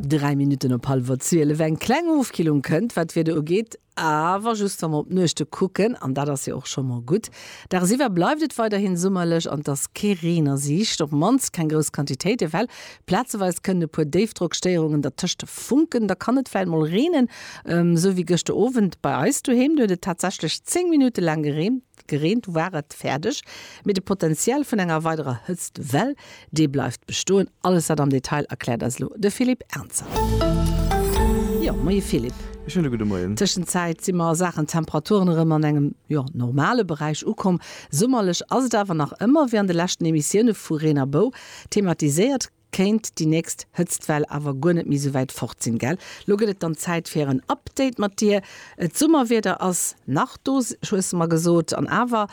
Dräi Minutten op hallwer zwielef. Eng kleng Ofkillung kënnt, wat d'Wieder ugeet, awer just wa mer op d'Nuechte kucken, an dat ass jo och scho mol gutt. Daagsiwwer bleift et weiderhi summerlech an et ass kee Reen a Siicht, op d'mannst keng grouss Quantitéite well. Plazeweis kënnen e puer Déifdrockstéierungen dertëscht funken, da kann et vläicht mol reenen, esou wéi gëschter Owend bei eis doheem. Do huet et tatsächlech 10 Minutte laang gereent. Gereent war et fäerdeg, mee de Potential vun enger weiderer Hëtztwell, dee bleift bestoen. Alles dat am Detail erkläert eis elo de Philippe Ernzer. Jo, moie Philippe. E schéine gudde Moien. Tëschenzäit si mer a Saachen Temperaturen erëm an engem, jo, normale Beräich ukomm. Summerlech ass et awer nach ëmmer, wéi an de leschten Emissioune vu Reen a Bou thematiséiert. Kéint déi nächst Hëtztwell awer guer net méi sou wäit fort sinn, gell? Lo gëtt et dann Zäit fir en Update mat dir. D'Summerwieder ass nach do, hues de mer gesot, an awer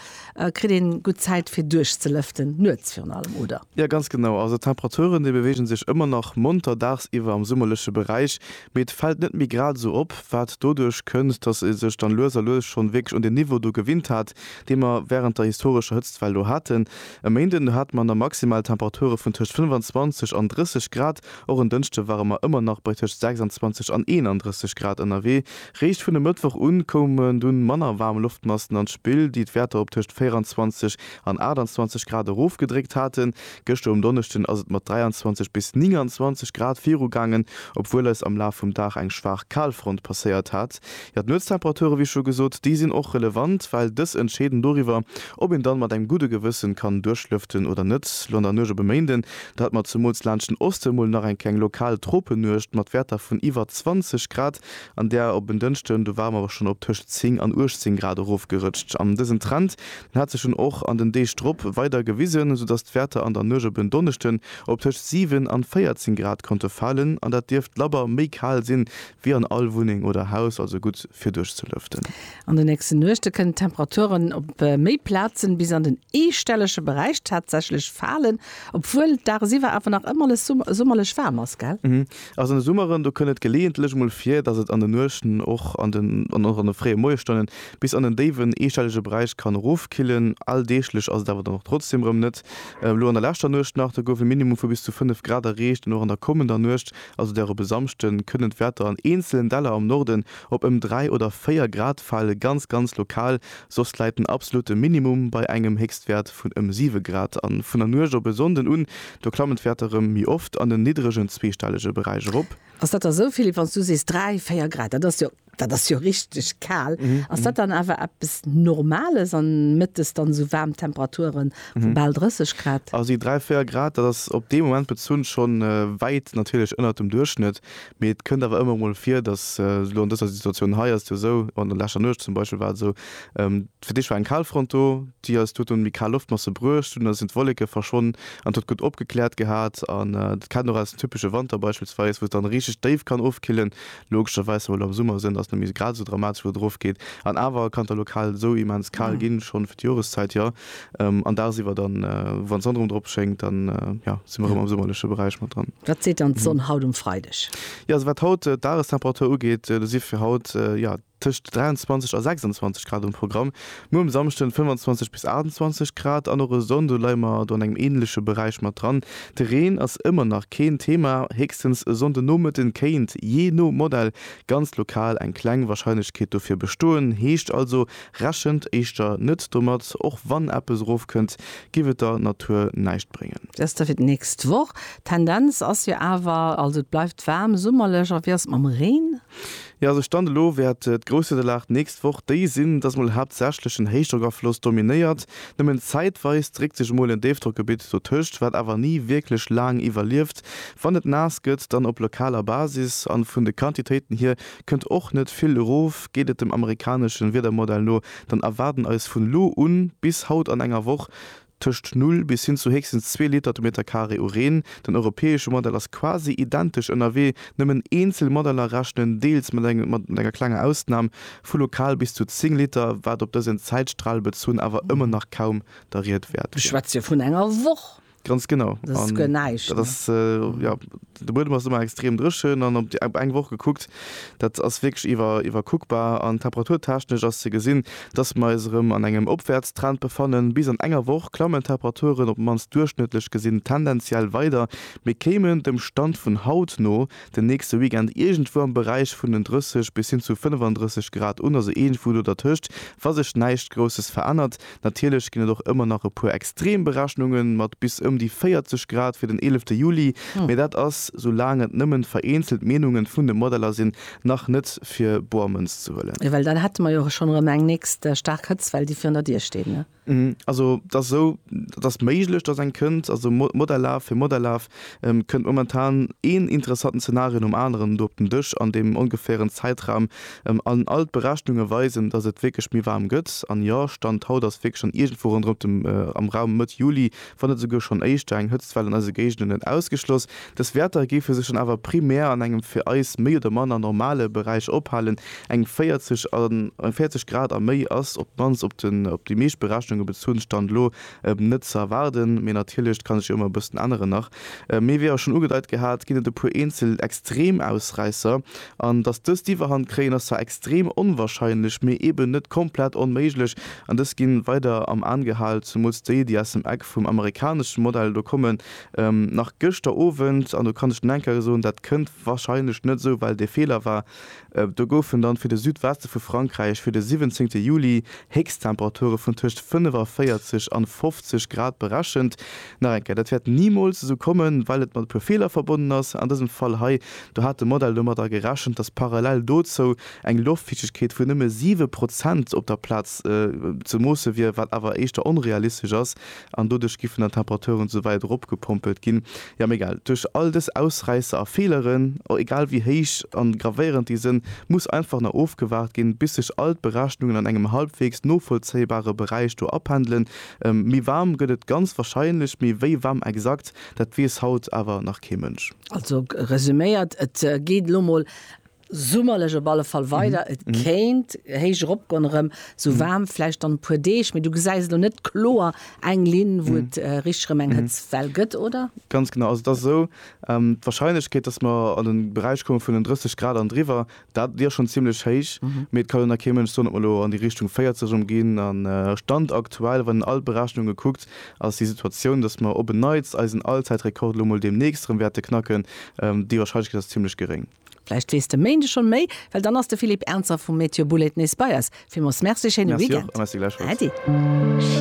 kritt een gutt Zäit fir duerchzelëften, nuets virun allem, oder? Jo, ganz genau. Also d'Temperaturen, déi beweegen sech ëmmer nach monter dagsiwwer am summerleche Beräich, mee et fält net méi grad esou op, wat doduerch kënnt, dass ee sech dann lues a lues schonn wierklech un deen Niveau do gewinnt hat, dee mer wärend der historescher Hëtztwell do haten. E Méinden hate mer na maximal Temperature vun tëscht 25 an 30 Grad. Och en Dënschde ware mer ëmmer nach bei tëscht 26 an 31 Grad ënnerwee. Réischt vun e Mëttwoch un koumen dunn manner waarm Loftmassen an d'Spill, déi d'Wäerter op tëscht 24 an 28 Grad erofgedréckt haten. Gëschter um Donneschden ass et mat 23 bis 29 Grad virugaangen, obwuel eis am Laf vum Dag eng schwaach Kalfront passéiert hat. Jo, d'Nuetstemperaturen, wéi scho gesot, déi sinn och relevant, well dës entscheeden doriwwer, ob een dann mat engem gudde Gewëssen kann duerchlëften oder net. Lo an der Nuecht op e Méinden, da hat mer zumools laanscht den Osten mol nach eng kleng lokal Tropennuecht mat Werter vun iwwer 20 Grad, an där op en Dënschden, do ware mer awer schon op tëscht 10 an 18 Grad erofgerëtscht. An dësen Trend, den hat sech dunn och an den Deeg drop weider gewisen, soudass d'Werter an der Nuecht op en Donneschden op tëscht 7 an 14 Grad konnte falen, an dat dierft labber méi kal sinn, Wéi an all Wunneng oder Haus, also gutt fir duerchzelëften. An de nächste Nuechte kënnen d'Temperaturen op méi Plazen bis an den eestellege Beräich tatsächlech falen, obwuel dagsiwwer awer nach ëmmer alles summerlech waarm ass, gell? Also an de Summeren, do kënn et geleeëntlech mol vir, dass et an de Nuechten och an de fréie Moiesstonnen bis an den déiwen eestellege Beräich kann erofkillen. Alldeeglech ass et awer dann och trotzdeem erëm net. Elo an der leschter Nuecht nach, do gouf e Minimum vu bis zu 5 Grad erreecht an och an der kommender Nuecht Also der op e Samschde kënnen d'Wäerter an eenzelen Däller am Norden op ëm 3 oder 4 Grad fale, ganz ganz lokal, soss läit den absolute Minimum bei engem Héchstwäert vun ëm 7 Grad. A vun der Nuecht op e Sonnden un, do klammen d'Wäerter erëm méi oft an en niddregen zweestellege Beräich erop. Ass dat da souvill, wann s du sees 3, 4 Grad? Dat ass jo Dat ass jo richteg kal. Ass dat dann awer eppes Normales an Mëttes dann esou waarm Temperaturen vu bal 30 Grad? Also déi 3, 4 Grad, dat ass op dee Moment bezunn schonn wäit natierlech ënnert dem Duerchschnëtt, mee et kënnt awer ëmmer emol vir, dass elo an dëser Situatioun hei ass et jo esou, an der leschter Nuecht zum Beispill war et esou, fir d'éischt war eng Kalfront do, déi eis huet dunn méi kal Loftmasse bruecht, dunn sinn d'Wolleke verschwonnen an et huet gutt opgekläert gehat an dat kennt een och aus dem typesche Wanter beispillsweis, wou et dann richteg déif kann ofkillen Logescherweis, wa mer elo am Summer sënn, ass net méi grad esou dramatesch, wou et erofgeet. An awer kann et da lokal esou immens kal ginn, schonn fir d'Joreszäit jo. An dagsiwwer dann, wann d'Sonn erëm drop schéngt, dann, jo, si mer erëm am summerleche Beräich mat dran. Wat seet dann d'Sonn haut um Freideg? Jo, also wat haut d'Dagestemperatur ugeet, do si fir haut, jo, Tëscht 23 a 26 Grad um Programm. Muer um Samschden 25 bis 28 Grad an och e Sonnde leie mer do an engem änleche Beräich mat dran. De Reen ass ëmmer nach keen Thema, héchstens e Sonndenomëtten kéint jee no Modell ganz lokal eng kleng Warscheinlechkeet dofir bestoen. Heescht also, rechent éischter net domat. Och wann eppes erofkënnt, giff et der Natur näischt bréngen. Dest da fir d'nächst Woch. Tendenz ass jo awer, also et bleift waarm, summerlech. A wéi ass et mam Reen? Jo, also Stand elo wäert d'Grousswiederlag d'nächst Woch déi sinn, dass mol haaptsächlech en Héichdrockafloss dominéiert. Nëmmen zäitweis dréckt sech emol en Déifdrockgebitt dotëscht, wat awer ni wierklech laang iwwerlieft. Wann et naass gëtt, dann op lokaler Basis. A vun de Quantitéiten hier kënnt och net vill erof. Geet et dem amerikanesche Wiedermodell no, dann erwaarden eis vun elo un bis haut an enger Woch, Tëscht null bis hin zu héchstens zwee Liter de Meter Carré u Reen. Den europäesche Modell ass quasi identesch ënnerwee, nëmmen eenzel Modeller rechnen deels mat engem mat enger klenger Ausnam vu lokal bis zu 10 Liter, wat op dësen Zäitstral bezunn awer ëmmer nach kaum der Ried wäert wier. Mir schwätze jo vun enger Woch. Ganz genau. Dat ass guer näischt, ne? De Buedem ass ëmmer extrem dréchen an op eng Woch gekuckt, dat ass wierklech iwwerkuckbar. An temperaturtechnesch ass ze gesinn, dass mer eis erëm an engem Opwäertstrend befannen. Bis an enger Woch klammen d'Temperaturen op d'mannst duerchschnëttlech gesinn tendenziell weider, mee kéimen dem Stand vun haut no den nächste Weekend iergendwou am Beräich vun den 30 bis hin zu 35 Grad un, also iergendwou do dertëscht, wa sech näischt Grousses verännert. Natierlech ginn et och ëmmer nach e puer Extremberechnunge mat bis ëm déi 40 Grad fir den eelefte Juli, mee dat ass, soulaang et nëmmen vereenzelt Meenunge vun de Modeller sinn, nach net fir boer Mënz ze huelen. Well dann hätte mer jo schonn erëm eng nächst staark Hëtztwell, déi virun der Dier steet. Also et ass esou, et ass méiglech, dass eng kënnt. Also Modell Laf fir Modell Laf Et kënnt momentan een interessanten Zenario nom aneren do op den Dësch an deem ongefären Zäitraum an all d'Berechnunge weisen, datt et wierklech méi waarm gëtt. An jo, Stand haut ass wierklech schonn iergendwou ronderëm dem am Raum Mëtt Juli, wann net esouguer schonn éischter, eng Hëtztwell an eise Géigenden net ausgeschloss. Dës Wäerter géife sech dann awer primär an engem fir eis méi oder manner normale Beräich ophalen, eng 40 Grad a méi ass op d'mannst op déi meescht Berechnunge bezunn, Stand elo, Net ze erwaarden, mee natierlech, et ka sech jo ëmmer e bëssen änneren nach. Mee wéi awer schonn ugedeit gehat, ginn et e puer eenzel Extremausräisser. An datt dës d'Iwwerhand kréien, ass zwar extrem onwarscheinlech, mee eben net komplett onméiglech. An dës ginn weider am An gehal, zumools déi, déi aus dem Eck vum amerikaneschen Modell do kommen. Nach gëschter Owend, an do kann ech den Henker soen, dat kënnt warscheinlech net esou well dee Feeler war, Do goufen dann fir de Südweste vu Frankräich fir de 17 Juli Héchsttemperature vun tëscht 45 an 50 Grad berechent. Nach eng Kéier, dat wäert nimools esou kommen, well et mat e puer Feeler verbonnen ass. An dësem Fall hei, do hat de Modell domadder gerechent, dass parallel dozou eng Loftfiichtegkeet vun nëmme 7 Prozent op der Plaz ze moosse wier, wat awer éischter onrealistesch ass, an doduerch giffen dann d'Temperaturen esou wäit eropgepompelt ginn, jo mee egal, duerch all dës Ausräisser a Feeleren, egal wéi héich an gravéierend déi sënn, muss einfach nach ofgewaart ginn, bis sech all d'Berechnungen an engem halbweegs novollzéibare Beräich do apendelen. Méi waarm gëtt et ganz wahrscheinlech, mee wéi waarm exakt, dat weess haut awer nach kee Mënsch. Also resuméiert, et geet elo mol Summerlech op alle Fall weider. Et kéint héich eropgoen erëm, sou waarm vläicht dann e puer Deeg, mee du gesäis elo net kloer eng Linn, wou et richteg erëm eng Hëtztwell gëtt, oder? Ganz genau, also et ass esou, d'Warscheinlechkeet, dass mer an de Beräich komme vun den 30 Grad an driwwer, dat, déi ass schonn zimmlech héich, mee et kann elo nach kee Mënsch soen, ob mer elo an déi Richtung 40 erëm ginn. A Stand aktuell, wann een all d'Berechnunge kuckt, ass déi Situatioun, dass mer op en Neits eisen Allzäitrekord elo mol deemnächst erëm wäerte knacken, déi Warscheinlechkeet ass zimmlech geréng. Vläicht weess de Méinde schonn méi, well dann ass de Philippe Ernzer vum Météo Bouled nees bei eis. Villmools Merci, schéine Weekend. Merci och a merci gläichfalls. Äddi.